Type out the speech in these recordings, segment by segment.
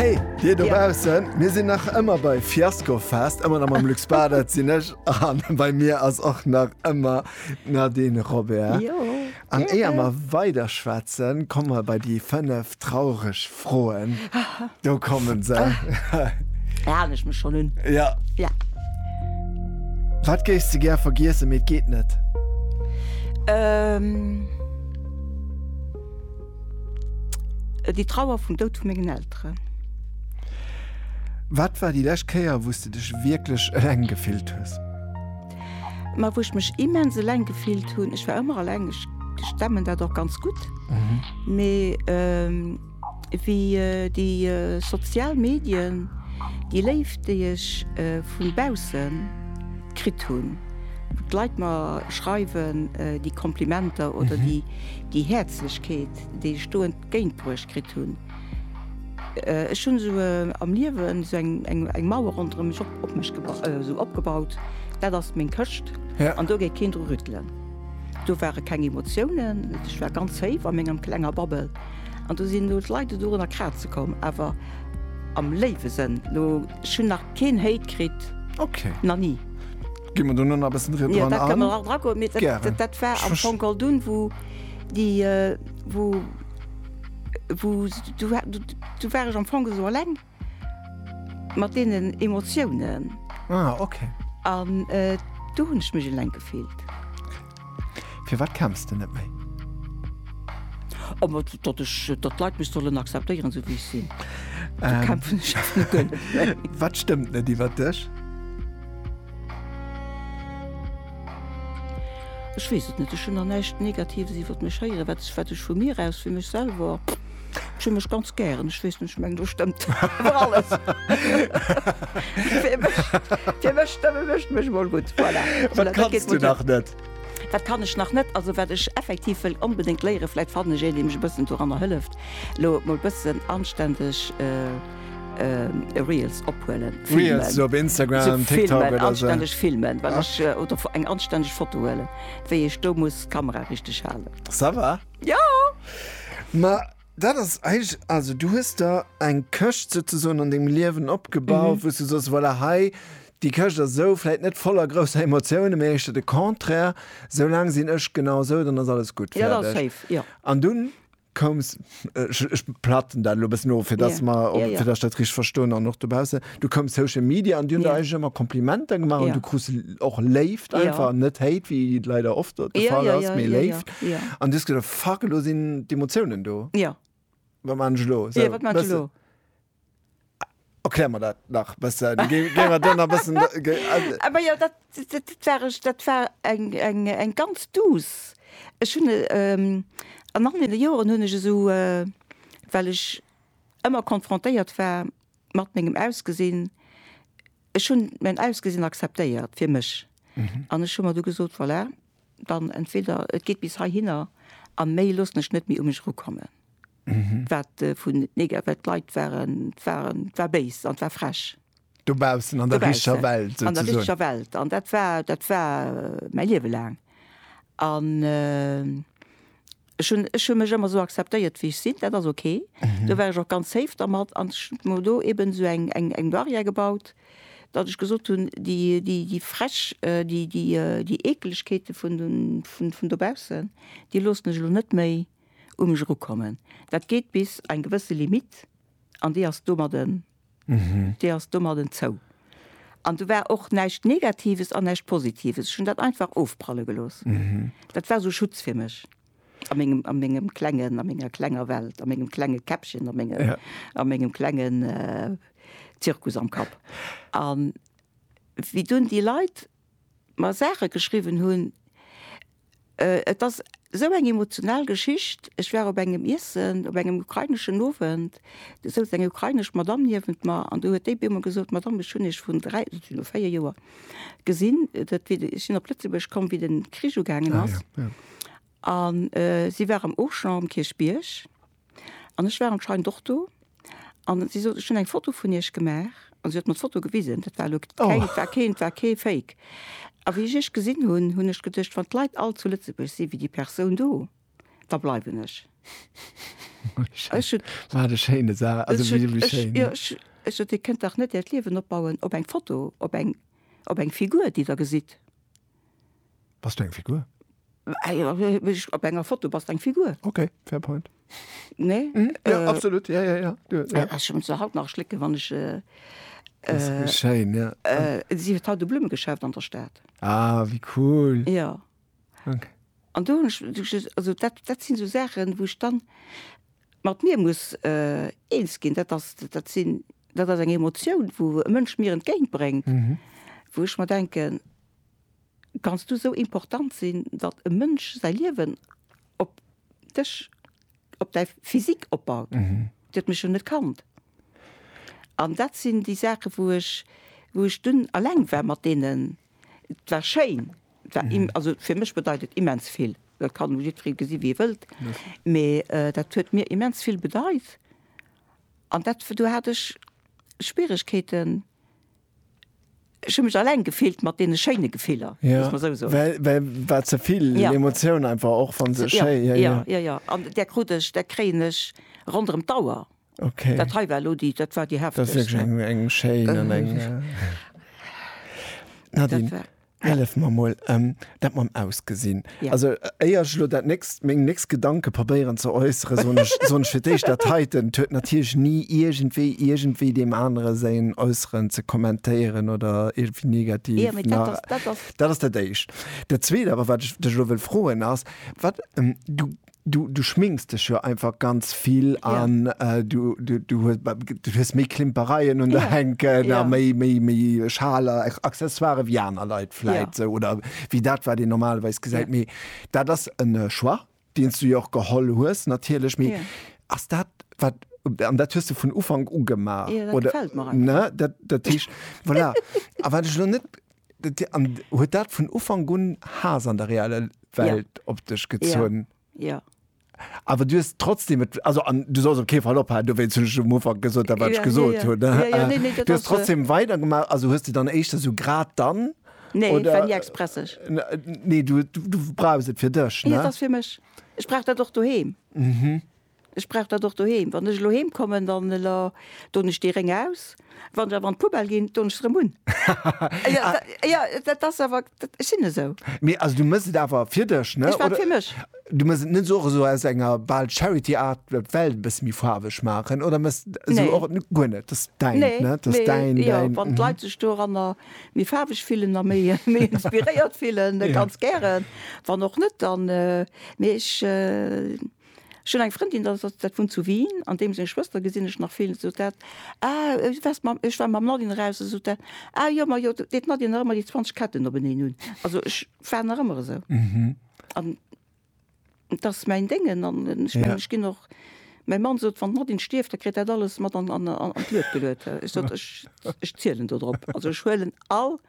Hey, dir dobaussen, mir sinn nach ëmmer bei Fiasko fest, ëmmer am am Lux Bader sinn ech an bei mir ass och nach ëmmer Nadine Robert. An éier mer weider schwätzen, komme mer bei déi fënnef traureg Froen. Do komme se. Da halen ech mech schonn un. Ja. Ja. Wat géifs de gär vergiessen, mee et geet net? Äh, déi Trauer vum Doud vu mengen Elteren. Wat war déi lescht Kéier, wou s de dech wierklech eleng gefillt hues? Ma wou ech mech immens eleng gefillt hunn, ech war ëmmer eleng, ech stemmen dat och ganz gutt, mee wéi déi sozial Medien, déi Léift, déi ech vu bausse kritt hunn, wou d'Leit mer schreiwen, déi Komplimenter oder déi, Déi Häerzlechkeet, déi ech do entgéintbruecht kritt hunn, ech hunn esou am Liewen esou eng Mauer ronderëm mech op mech esou opgebaut, dat ass meng Këscht an do gétt keen dru rüttelen. Do ware keng Emotiounen, ech war ganz séif a menger klenger Bubble an do sinn elo d'Leit dorunner kraze komm, awer am léiwe Sënn. Ech hunn nach keen Hate kritt, nach ni. Ginn mer do no nach e bëssen dran an? Jo, dat kënnen mer nach dran goen. Gären. Dat war am Fong all dunn, wou déi, wou, wou, do war, do war ech am Fong esou eleng mat deenen Emotiounen. Ah, okay. An do hunn ech mech eleng gefillt. Firwat kämpfs de net méi? Datt ech, datt d'Leit mech sollen akzeptéieren esou wéi ech sinn. Do kämpfen ech awer net géint méi. Wat stëmmt net iwwer dech? Ech weess et net, ech hunn der näischt Negatives iwwer mech héieren. Wat ech vu mir aus, fir mech selwer. Ech hunn mech ganz gären. Ech weess net, ech mengen do stëmmt awer alles. Fir mech, fir mech stëmme mech mech mol gutt. Voilà. Wat Voilà, dat geet kanns mol du nach net? Wat kann ech nach net? Also wat ech effektiv wëll onbedéngt léieren, vläit fannen ech een, dee mech e bëssen doranner hëlleft, elo mol e bëssen anständeg äh, Reels ophuelen, filmen. Reels op Instagram, So TikTok filmen, oder so. anständeg filmen, well ech, äh, oder eng anständeg Foto huelen, wéi ech do muss d'Kamera richteg halen. Ça va. Jo! Ma dat ass eigentlech, also du hues der eng Këscht souzesoen an dengem Liewen opgebaut, wou s du soss, voilà, hei, déi Këscht ass esou, vläit net voller grousser Emotiounen, mee éischter de Contraire, esou laang sinn ech genau esou, dann ass alles gutt, fäerdeg. Jo, da ass séif, jo. An dunn koums, ech platten dat elo e bëssen of, fir dass mer, fir dass ech dat richteg verstoen an och dobaussen. Du koum Social Media an Dir hutt yeah. eis ëmmer Komplimenter gemaach yeah. an du krus och Léift einfach yeah. net Hate wéi leider oft de yeah, Fall yeah, ass yeah, méi yeah, Léift an yeah, yeah. dus gët fuck lo sinn d'Emotiounen do. Ja. Yeah. Wat man lo? So, yeah, wat man lo? Erklär mir dat nach besser. Ge ge wir dann ein bisschen. Ge also. Aber ja, das, das, das war, ich, das war ein, ein, ein ganz dus. Ich habe ähm, an anderen Jahren habe ich so, äh, weil ich immer konfrontiert war Mat mengem Ausgesinn, ech hunn mäin Ausgesinn akzeptéiert fir mech an ech hu mer du gesot, voilà, dann entweder et geet bis heihinner a méi loossen ech net méi u mech erukommen. Wat vun nega-, well d'Leit waren, waren, war béis an war frech. Dobaussen, an der richtger Welt souzesoen. An der richtger Welt. An dat war, dat war mäi Liewe laang. An Ech hunn, ech hu mech ëmmer esou akzeptéiert, wéi ech sinn. Dat ass ok. Do war ech och ganz safe dermat. An ech hunn mer do eeben esou eng, eng, eng Barrière gebaut, datt ech gesot hunn, déi, déi, déi frech, déi, déi, déi Eekelegkeete vun de, vun, vun dobaussen, déi loossen ech elo net méi u mech erukommen. Dat geet bis eng gewësse Limite an déi ass domadden D'Dir ass domadden zou. An do war och näischt Negatives an näischt Positives. Ech hunn dat einfach ofpralle gelooss. Dat war esou Schutz fir mech a mengem, a mengem klengen, a menger klenger Welt, a mengem klenge Käppchen, a menge, a mengem klengen Zirkus am Kapp. A wéi dunn déi Leit mer Saache geschriwwen hunn. Et ass esou eng emotional Geschicht, ech war op engem Iessen, op engem ukraineschen Owend, do souz eng ukrainesch Madamm niewent mer an do huet déi op eemol gesot, Madamm, ech hunn Iech vrun dräi, dat sinn elo véier Joer, gesinn, dat wéi de, ech sinn op Lëtzebuerg komm, wéi den Krich ugaangen ass. An si war am Auchan um Kierchbierg. An ech war anscheinend och do. An si sot, ech hunn eng Foto vun Iech gemaach. An si huet mer d'Foto gewisen. Dat war elo keng, dat war keen, dat war kee Fake. A wéi ech Iech gesinn hunn, hunn ech geduecht, wann d'Leit all zu Lëtzebuerg si wéi déi Persoun do, da bleiwen ech. Ech hunn, Wat e schéine Sa, also ech hunn, wéi ech, schéin. jo, ech, ech sot, Dir kënnt dach net Äert Liewen opbauen op eng Foto, op eng, op eng Figur, déi Der gesitt. Bass du eng Figur? Op enger Foto bass eng Figur. Okay, fair point. Nee? Mm, ja, äh, absolut, ja, ja, ja. Du, ja. Äh, schon so haut nach schlicken, wann ich. Äh, äh, schein, ja. äh, sie hat haut de Blummegeschäft an der Stadt. Ah, wie cool. Ja. Okay. An du, also dat, dat sinn so Sachen, wo ich dann mat mir muss äh, eens ginn, dat ass dat sinn dat ass eng Emotion, wo e Mënsch mir entgéintbrengt, mhm. wo ich mal denken, Kanns du sou important sinn, datt e Mënsch säi Liewen op dech, op däi Physique opbaut? Dir huet mech jo net kannt. An dat sinn déi Saache wou ech, wou ech dunn eleng war mat deenen. Et war schéin, et war im, also fir mech bedeit et immens vill. Dat kann elo jiddweree gesi wéi e wëllt, mee dat huet mir immens vill bedeit. An dat, do hat ech Schwieregkeeten. Ech hunn mech alleng gefillt mat deene schéine Gefiller, muss mer esou soen. Well war ze vill Emotioun einfach, och wann se schéi. Jo, jo, jo, jo. An där krut ech, där kréien ech ronderëm d'Auer. Okay. Dat hei war elo déi, dat war déi heftegst. Dat ass wierklech eng schéin an eng. Nadine. Hellef mer mol em dat mam Ausgesinn. Also éier ech elo dat nächst, meng nächst Gedanke probéieren ze äusseren, soen ech soen ech fir d'éischt, dat heiten huet natierlech ni iergendwéi iergendwéi deem anere säin Äusseren ze kommentéieren oder iergendwéi negativ Jo, mee dat ass, dat ass. Dat ass dat éischt. Dat zweet awer, wat ech dech elo wëll froen, ass, wat du, Du du schminks dech jo einfach ganz vill Ja. an du du du hues du hues méi Klimpereien un der Ja. hänken a Ja. méi méi méi Schaler, Accessoiren ewéi aner Leit Ja. vläit esou oder ewéi dat wat een normalerweis gesäit. Ja. Mee dat ass en Choix deen s du jo och geholl hues natierlech. Mee Ja. ass dat wat, an dat hues du vun Ufank u gemaach, Ja, dat oder gefält mer einfach. ne dat dat heescht voilà a wat ech elo net An huet dat vun Ufank un Haass an der reeller Welt ja. op dech gezunn? Ja. ja. Awer du hues trotzdem et, also an du solls op kee Fall ophalen, do wéinst hunn ech um Ufank gesot, dat wat ech gesot hunn. Du hues trotzdem weidergemaach, also hues de dann éischter sou grad dann? Nee, et war ni expresseg. Nee, du brauchs et fir dech, ne? Jo, et ass fir mech. Ech brauch dat och doheem. Ech brauch dat och doheem. Wann ech elo heem kommen, dann doen ech dee Réng aus. Wann ech awer an d'Poubelle ginn, doen ech se erëm un. Jo, dat ass awer, ech sinn esou. Mee also du méchs et awer fir dech, ne? Ech maache et fir mech. Du méchs et net esou och esou aus enger bal Charity-Art, d'Welt e bësse méi faarweg maachen? Oder méchs et esou och guer net? Dat ass däin, ne? Nee, dat ass däin, däin. Jo, wann d'Leit sech doranner méi faarweg fillen a méi inspiréiert fillen, ganz gären. Wann och net, dann, mee ech. Ech hunn eng Frëndin, dat ass, dat wunnt zu Wien, an deem seng Schwëster gesinn ech nach vill, sot dat, Ah, du waars mam, ech war mam Nadine raus, da sot dat, Ah jo, ma jo, deet d'Nadine nach ëmmer déi 20 Ketten openeen un. Also ech war nach ëmmer esou. An et ass mäin Déngen an ech mengen, ech ginn och, mäi Mann sot, wann d'Nadine stierft, da kritt dat alles mat an, an, an d'Luet geluet. Ech sot, ech, ech zielen dodrop. Also ech huelen all.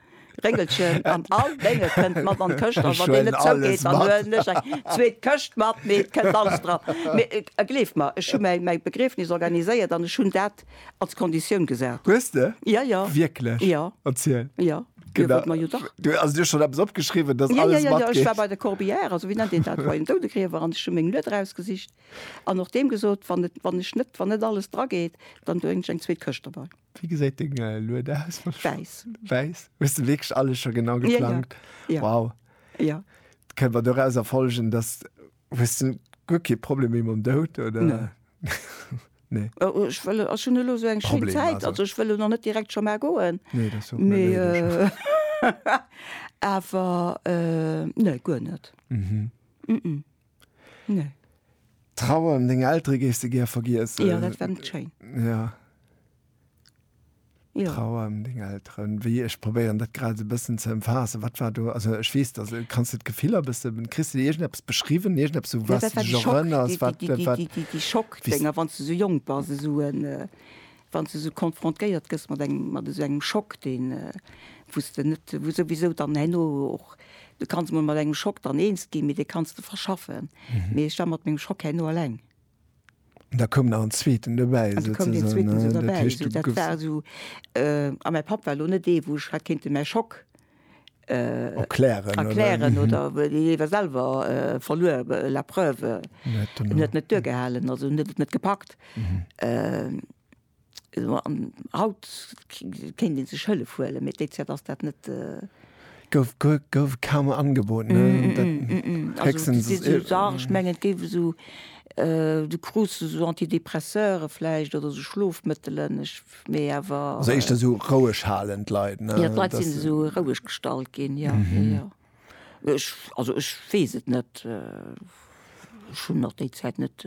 Réngelchen an all Dénge kënnt mat an d'Këscht an wann deen net zougeet, dann huelen ech eng zweet Këscht mat, mee et kënnt alles dran. Mee gleeft mer, ech hu mäi mäi Begriefnis organiséiert an ech hunn dat als Konditioun gesat. Hues de? Ja, ja. Wierklech? Ja. Erziel. Ja, jo, Genau. wollt mer jo dach. Du, also du hues schonn eppes opgeschriwwen, dass Ja, ja, alles ja, ja, ech war matgeet? bei de Corbière, also wéi nennt een dat, bei den Doudegriewer an ech hu meng Lued erausgesicht an och deem gesot, wann et, wann ech net, wann net alles drageet, dann doen ech eng zweet Këscht derbei. Wie gesäit deng äh, Lued aus? Wäiss. Wäiss? Hues du wierklech alles scho genau geplangt? Ja, ja. Wow. Ja. Kënnt man doraus erfolgen, dass hues du guer kee Problem méi mam Dout oder? Nee. nee. Äh, oh, ech wëll ass schon elo so eng schéin Zäit, also. also ech wëll noch net direkt scho mar goen. Nee, das so. Me äh, awer äh, nee, guer net. Mhm. Mm -mm. Nee. Trauer ëm deng Eltere géifs de gär vergiessen? Jo, dat wär net schéin. Ja. Jo. Trauer ëm deng Elteren. Wéi, ech probéieren dat grad esou e bëssen ze ëmfaassen. Wat war do, also ech weess, dass, kanns de d'Gefiller e bësse, kriss de do iergendeppes beschriwwen, iergendeppes esou, Ja, waat dat du war de dech Schock, erënners, wat, déi, déi, wat, déi, déi, déi, déi Schockdénger, wann s du esou jonk bass, esou en, Wann s du esou konfrontéiert gëss mat engem, mat esou engem Schock, deen, wou s de net, wou souwisou dann herno och, du kanns emol mat engem Schock dann eens ginn, mee dee kanns de verschaffen. Mee ech war mat mengem Schock herno eleng. An da koum nach en zweeten dobäi. An da koum deen zweeten esou derbäi. Dat heescht, du goufs. Esou, dat war esou, a mäi Papp war elo net dee, wou ech hat kéinten mäi Schock. erklären erklären oder iwwer selwer verluer la preuve net net duergehalen also net net gepackt an haut kéint dee sech hëllef huele mee déi Zäit ass dat net gouf gouf kaum angebot ech menge et géif esou du krus esou antidepresseure vläicht oder esou schlofmëttelen ech mee awer. Also éischter sou roueg halen d'Leit, ne? Jo, d'Leit sinn esou roueg gestallt ginn, jo, jo, jo. Ech, also ech weess et net. Ech hunn nach déi Zäit net,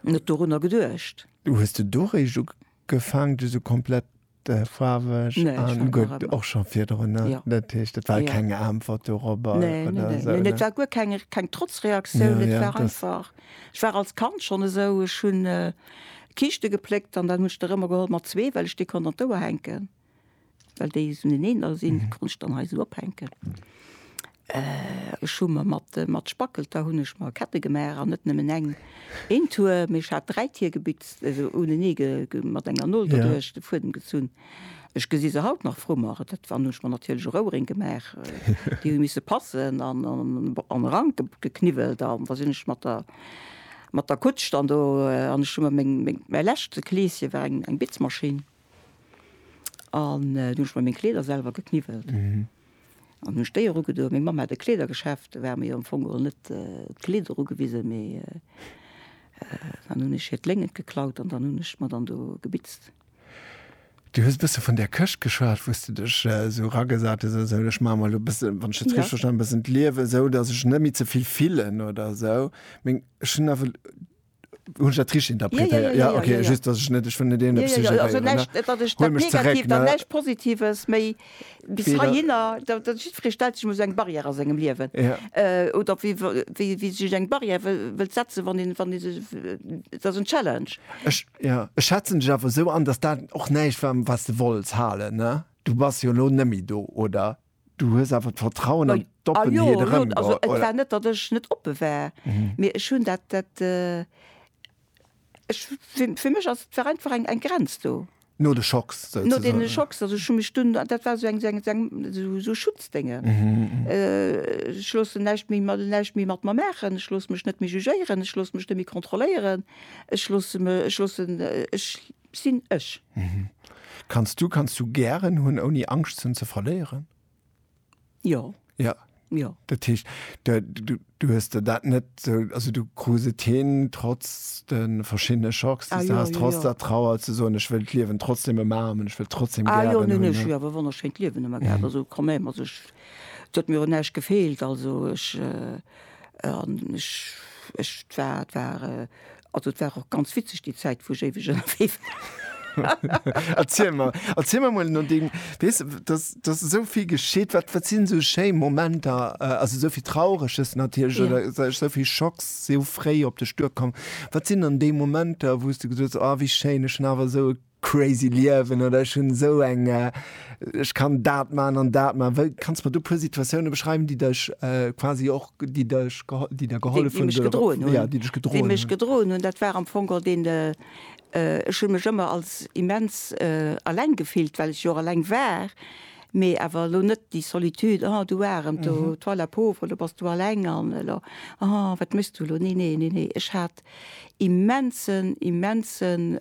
net dorunner geduecht. Du hues de do réischt ugefaangen, du sou komplett faarweg an. Nee, ech war nach ëmmer. Gutt, och scho virdrun, ne? Jo. Dat heescht, et war keng Äntwert doropper oder esou, ne? Nee, nee, nee, et war guer keng, keng Trotzreaktioun, et war einfach. Ech war als Kand schonn esou, ech hunn. Kiischte gepléckt an dann hunn ech der ëmmer geholl mat zwee, well ech déi konnt an d'Ouer hänken, well déi esou neneener sinn, déi konnt ech dann hei esou ophänken. Ech hu mer mat, mat Spackelter hunn ech mer Kette gemaach an net nëmmen eng, een Tuer, mee ech hat dräi Tier gebitzt, esou unenee ge, ge, mat enger Nol doduerch de Fuedem gezunn. Ech gesi se haut nach frummer. Dat waren hunn ech mer natierlech och Ouering gemaach. Déi hu misse passen an an e Rank gekniwwelt. An da sinn ech mat der mat der Kutsch dann do an ech hu mer meng meng mäi leschte Kleeschen war eng eng Bitzmaschinn an du hunn ech mer meng Kleeder selwer gekniwwelt an hunn ech déi erugedoen. Meng Mamm hat e Kleedergeschäft, do war mir jo am Fong geholl net d'Kleed erugewisen, mee dann hunn ech hir d'Léngt geklaut an dann hunn ech mer dann do gebitzt. Du hues e bësse vun där Këscht geschwat, wou s du dech esou eragesat hues oder esou. Ech maache mer elo e bësse, wann ech dat richteg verstanen hunn, e bëssen d'Liewen esou, datt ech net méi ze vill fillen oder esou. Mee ech hunn awer, hunn ech dat richteg interpretéiert? Jo, okay, just, datt ech net, ech wëll net iergendepes suggéréieren, ne? Huel mech zeréck, ne? Bis heihinner, datt jiddweree stellt sech mol esou eng Barrière a sengem Liewen. Oder wéi wéi e sech eng Barrière wëllt setzen, wann een, wann ee sech, dat ass en Challenge. Ech, jo, ech schätzen dech awer esou an, datt dat och näischt war, wat s de wollts halen, ne? Du bass jo elo net méi do, oder du hues awer d'Vertrauen an d'Oppenheet erëm, oder? Jo, jo, also et war net, datt ech net oppe war, mee ech hunn dat, dat, Ech, fir, fir mech ass, et war einfach eng, eng Grenz do. No de Schocks No deene souzesoen. Schocks, also ech hu mech dunn, dat war esou eng, esou eng, esou eng, esou, esou Schutzdénge. Ech loossen näischt méi mat, näischt méi mat mer maachen, ech loosse mech net méi jugéieren, ech loosse mech net méi kontrolléieren, ech loosse me, ech loossen, ech sinn ech. Kanns du, kanns du gären hunn, ouni Angscht hunn ze verléieren? Jo. Ja. Jo. Dat heescht, de, du, du hues der dat net sou, also du krus et hin, trotz de verschiddene Schocks, déi s du has, trotz der Trauer, ze soen, ech wëll d'Liewen trotzdem ëmmer haben, ech wëll d'trotzdem gären hunn. Ah jo, neen, neen, ech hunn awer e wonnerschéint Liewen ëmmer gehat, also quand même, also ech, et huet mir un näischt gefeelt, also ech, an ech, ech, et war, et war Also et war och ganz witzeg déi Zäit wou ech éiweg ënnerwee war. Erziel mer, erziel mer mol no deem, weess de, dass, dass esou vill geschitt, wat, wat sinn esou schéi Momenter, also esou vill Traureges natierlech Ja. oder sou esou vill Schocks si esou fréi op dech duerkomm, wat sinn dann déi Momenter wou s de gesot hues, oh wéi schéin, ech hunn awer esou e Crazy Liewen oder ech hunn esou eng, ech kann dat man an dat man. Wéi kanns de mer do puer Situatiounen beschreiwen déi dech quasi och, déi dech geholl, déi der gehollef hunn, déi dech gedroen hunn? Déi mech gedroen hunn, dat war am Fong och deen, ech hunn mech ëmmer als immens alleng gefillt, well ech jo och alleng war, mee awer elo net déi Solitude, oh du Aarem, toi la pauvre, elo bass du alleng an elo, oh wat méchs du elo, nee nee, ech hat Immensen, immensen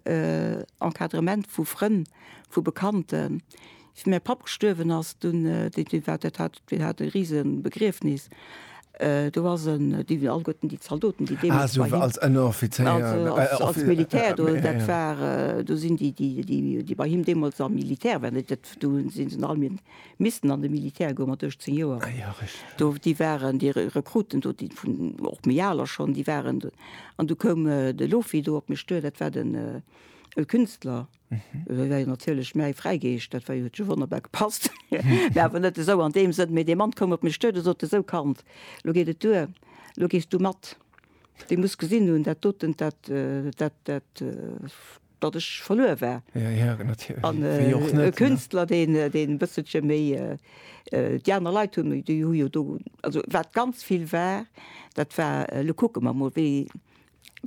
Encadrement vu Frënn, vu Bekannten. Wéi mäi Papp gestuerwen ass, dunn, dee, dee war, dat hat, deen hat e rise Begriefnis. Do ass en, déi si alleguerten, déi Zaldoten, déi deemools bei him. Ah, esou als Ënneroffizéier, als, als Militär, do, dat war, do sinn déi, déi, déi, déi bei him deemools am Militär waren, dat, do sinn se alleguerten. Missten an de Militär goe mat 18 Joer. Ah ja, richteg. Do, déi waren, déi Rekruten do, déi vun, och méi aler schonn, déi waren do. An du koum de Lofi do op mech duer, dat war den Künstler, dat war jo natierlech mäi Fräigeescht, dat war jo, huet jo wonnerbar gepasst. Mä awer net esou an deem Sënn. Mee dee Mann koum op mech duer, dee sot, esou Kand, elo geet et duer, elo gees du mat. Dir musst gesinn hunn, dat doten, dat, dat, dat, datt ech verluer war. Ja, ja, natierlech. An Wéi och net, e ne? Künstler, deen, deen e bësselche méi, déi aner Leit hu, déi hu jo do, also wat ganz vill war, dat war, elo kucke mer mol, wéi,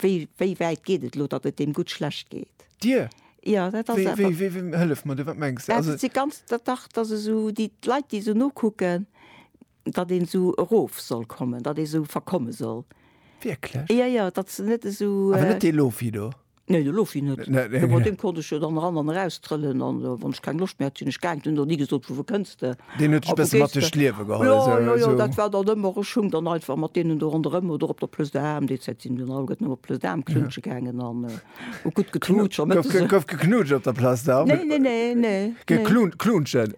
wéi, wéi wäit geet et elo, datt et deem gutt schlecht geet. Dir? Ja, dat ass Wéi, awer. wéi, wéi, wéi, hëllef mer du, wat mengs de? Ja, Also, dat si ganz, dat, dach, datt esou déi, d'Leit, déi esou nokucken, Datt een esou erof soll kommen, datt ee esou verkomme soll. Wierklech? Jo, jo, datt se net esou. Awer net dee Lofi do? Nee, de Lofi net. Mat deem konnt ech jo dann eran an eraus trëllen an wann ech keng Loscht méi hat, sinn ech gaangen. Hunn der ni gesot, Vu wou kënns de? Deen huet dech e bëssen mat duerch d'Liewe geholl. Jo, jo, jo, dat war dann ëmmer. Ech hung dann einfach mat deenen do ronderëm oder op der Plëss de Haam, déi Zäit sinn mir dann alleguerten ëmmer op d'Plëss de Haam knutsche gaangen an hu gutt geknutscht. Gouf geknutscht op der Plëss de Haam? Nee, nee, nee, nee. Geklunscht, knutschen?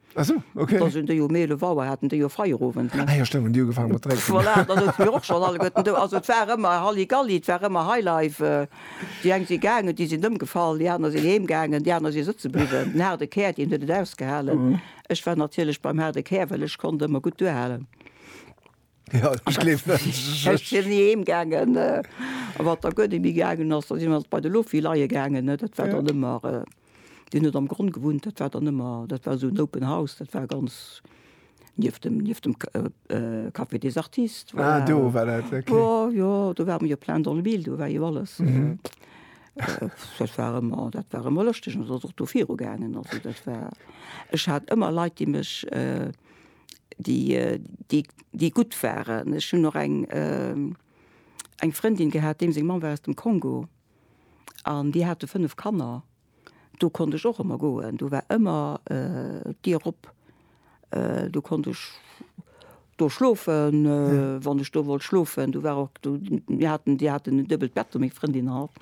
Ah sou, ok. Da sinn déi jo méi 11 Auer, haten déi jo Feierowend, ne? Ah jo, stémmt, hunn déi ugefaangen mat drénken. Voilà, da souze mir och schonn alleguerten do. Also et war ëmmer Halligalli, et war ëmmer Highlife. Déi eng si gaangen, déi sinn ëmgefall, déi aner sinn heem gaangen, déi aner si sëtze bliwwen. Den haarde Kär, deen huet et ausgehalen. Ech war natierlech beim haarde Kär, well ech konnt ëmmer gutt duerhalen. Ja, ich gleef net. Ech si ni heem gaangen. A wat da guer net méi gaangen ass, da si mer bei de Loffi leie gaangen, ne. Dat war dann ëmmer, deen huet am Gronn gewunnt, dat war dann ëmmer, dat war esou en open house, dat war ganz nieft dem, nieft dem Café des Artistes, voilà. Ah, do war dat, ok. Jo, jo, do war ëmmer jo plein dans le mille, do war jo alles. Dat war ëmmer, dat war ëmmer lëschteg an et ass och do viru gaangen. Also dat war, ech hat ëmmer Leit, déi mech déi gutt waren. Ech hunn och eng Frëndin gehat, deem seng Mamm war aus dem Kongo an déi hate fënnef Kanner. Do konnt ech och ëmmer goen, do war ëmmer d'Dier op. Do konnt ech do schlofen, wann ech do wollt schlofen. Do war och, mir haten, déi haten en duebelt Bett do, meng Frëndin an hatt.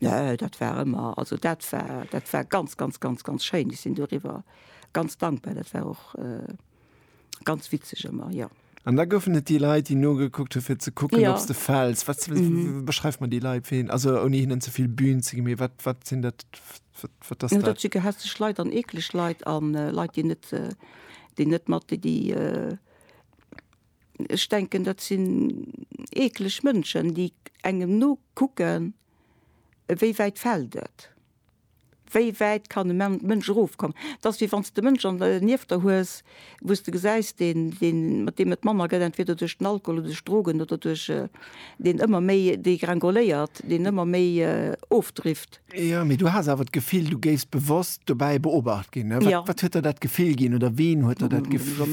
Nö, dat war ëmmer, also dat war, dat war ganz, ganz, ganz, ganz schéin. Ech sinn doriwwer ganz dankbar. Dat war och ganz witzeg ëmmer, jo. An da goufen et déi Leit, déi nogekuckt hu fir ze kucken, ob s de fäls. Wat, beschreif mer déi Leit, wéi, also ouni hinnen ze vill Bühn ze ginn, mee wat, wat sinn dat, wat ass dat? Dat si gehässeg Leit an eekleg Leit a Leit, déi net, déi net mat, déi, déi, Ech denken dat sinn eekleg Mënschen, déi engem nokucken, wéi wäit fält et, wéi wäit kann e Mënsch erofkommen. Et ass wéi wann s de Mënsch an der nieft der hues, wou s de gesäis, deen, deen, mat deem et manner gëtt, entweder duerch den Alkohol oder duerch Drogen oder duerch, deen ëmmer méi degringoléiert, deen ëmmer méi ofdrifft. Jo, mee du has awer d'Gefill, du géifs bewosst dobäi beobacht ginn. Wat, ja. wat huet der dat Gefill ginn oder ween huet der dat Gefill?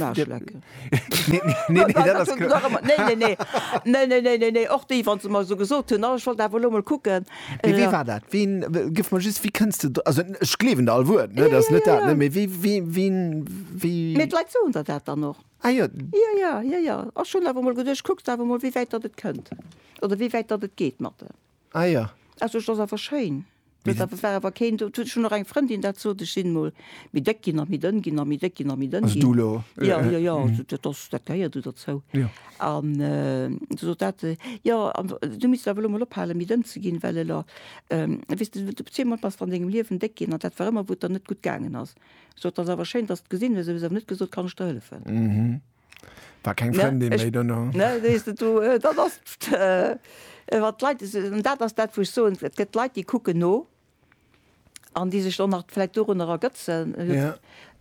Neeneeneeneneeneneenenneenenneenenneenenneen Ah jo. Also et ass awer schéin. Mee dat. Dat war awer keen do. Ech hunn och eng Frëndin dat sot, ech sinn mol méi déck ginn a méi dënn ginn a méi déck ginn a méi dënn ginn. Also du elo? Jo, jo, jo. Also dat ass, dat gehéiert do derzou. Jo. An du sot dat, jo, an du misst awer elo mol ophalen méi dënn ze ginn, well elo, weess de, du zwee mol bass der an dengem Liewen déck ginn an dat war ëmmer wou et der net gutt gaangen ass. Sot, et ass awer schéin dass de gesinn hues, mee se huet awer net gesot, kann ech der hëllefen. Mhm. War keng Frëndin méi dono. Ne, sees de, do, dat ass wat d'Leit, an dat ass dat wou ech soen, et gëtt Leit déi kucken no an déi sech dann nach vläicht dorunner ergëtzen.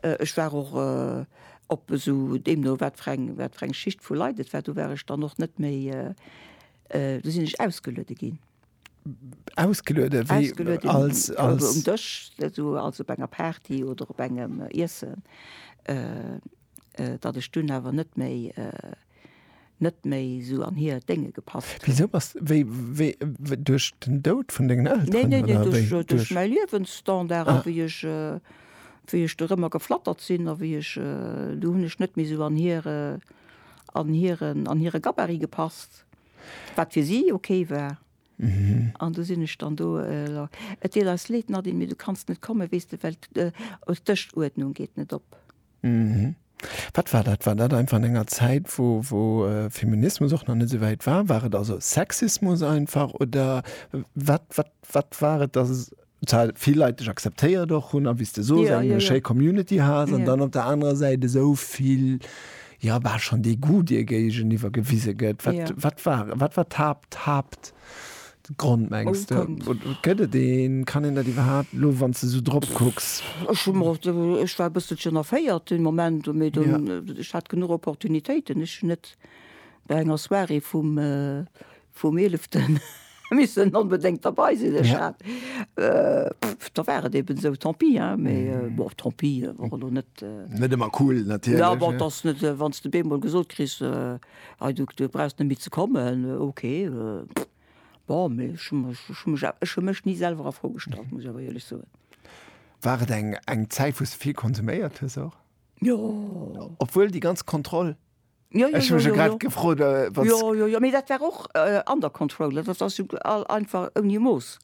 Ech war och op esou, deemno wat fir eng, wat fir eng Schicht vu Leit et war, do war ech dann och net méi, do sinn ech ausgeluede ginn. ausgeluede um Dësch esou als op enger Party oder op engem Iessen, datt ech dunn awer net méi net méi esou an hir Dénge gepasst hunn. Wisou bass wéi wéi duerch den Doud vun dengen Elteren? Neen neen neen duerch mäi Liewensstandard a wéi ech wéi ech dorëmmer geflattert sinn a wéi ech do hunn ech net méi esou an hire an hiren an hire Gabarit gepasst Wat fir si ok war. An du sinn ech dann do. Et deet eis leed, Nadine, mee du kanns net kommen, weess de, well d'Dëschuerdnung geet net op. Wat war dat? War dat einfach an enger Zäit, wou Feminismus och nach net esou wäit war? War et also Sexismus einfach oder wat war et, dass zwar vill Leit dech akzeptéiert och hunn a wéi s de soos, eng schéi Community has an dann op der anerer Säit esou vill, jo bal schonn Degoût dir géigeniwwer gewise gëtt. Wat wat war wat war d'Haapt d'Haaptgrond mengs de? Oder gëtt et een? Kann een dat iwwerhaapt elo wann s de esou drop kucks? Ech hu mer och, ech war e bësselchen erféiert den Moment, mee dunn, ech hat genuch Opportunitéiten. Ech hunn net bei enger Soirée vum Vum Eeleften missen onbedéngt derbei sinn, ech hat, pff, da war et eben esou, tant pis, hein, mee bon, tant pis wor elo net, Net ëmmer cool natierlech, ne. Jo, bon, et ass net, wann s de beemol gesot kriss, hei, du brauchs net méi ze kommen, ok, pff, bon, mee ech hu mech, ech hu mech, ech hu mech ni selwer a Fro gestallt, muss ech awer éierlech soen. War et eng Zäit, wou s de vill konsuméiert hues och? Jo. Obwuel déi ganz Kontroll? Jo, jo, jo, jo, jo. Gefrot, äh, jo, jo, jo, mee dat war och äh, under control, dat ass jo all einfach ouni Mooss.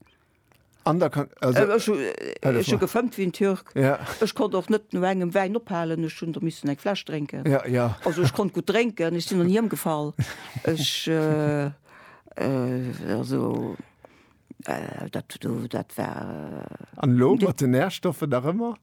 Under con also, äh, ech, äh, ech hu gefëmmt wéi en Türk. Ja. Ech konnt och net no engem Wäin ophalen, ech hunn der missen eng Fläsch drénken. Ja, ja. Also ech konnt gutt drénken, ech sinn och ni ëmgefall. Ech äh, äh, also äh, dat do, dat war. An elo mat de Nährstoffe nach ëmmer?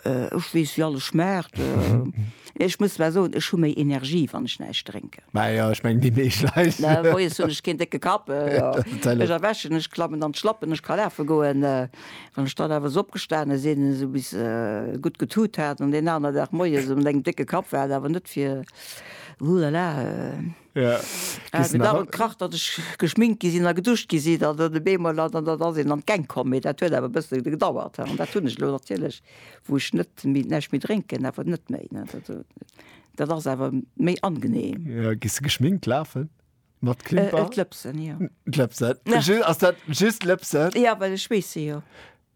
Ech weess wéi alles schmaacht. Ech muss zwar soen, ech hu méi Energie wann ech näischt drénken. Majo ech mengen déi meescht Leit. Moies hunn ech keen décke Kapp, ech erwächen, ech klammen an d'Schlappen, ech ka lafe goen. Wann ech dann awer esou opgestane sinn, esou bis gutt getut hat an deen aner Dag moies um Deng décke Kapp war et awer net fir, huhlala. Et huet awer gekracht, datt ech geschminkt gi sinn a geduscht gi sinn an dann op eemol an dann ass een an d'Gäng komm. Mee dat huet awer e bësse gedauert an dat hunn ech elo natierlech, wou ech net méi, näischt méi drénken, awer net méi. Dat ass awer méi angeneem. Jo, gees de geschminkt lafen? Mat Klimper? D'Lëpsen, jo. D'Lëpsen? Ass dat just d'Lëpsen? Jo, well ech schweesse jo.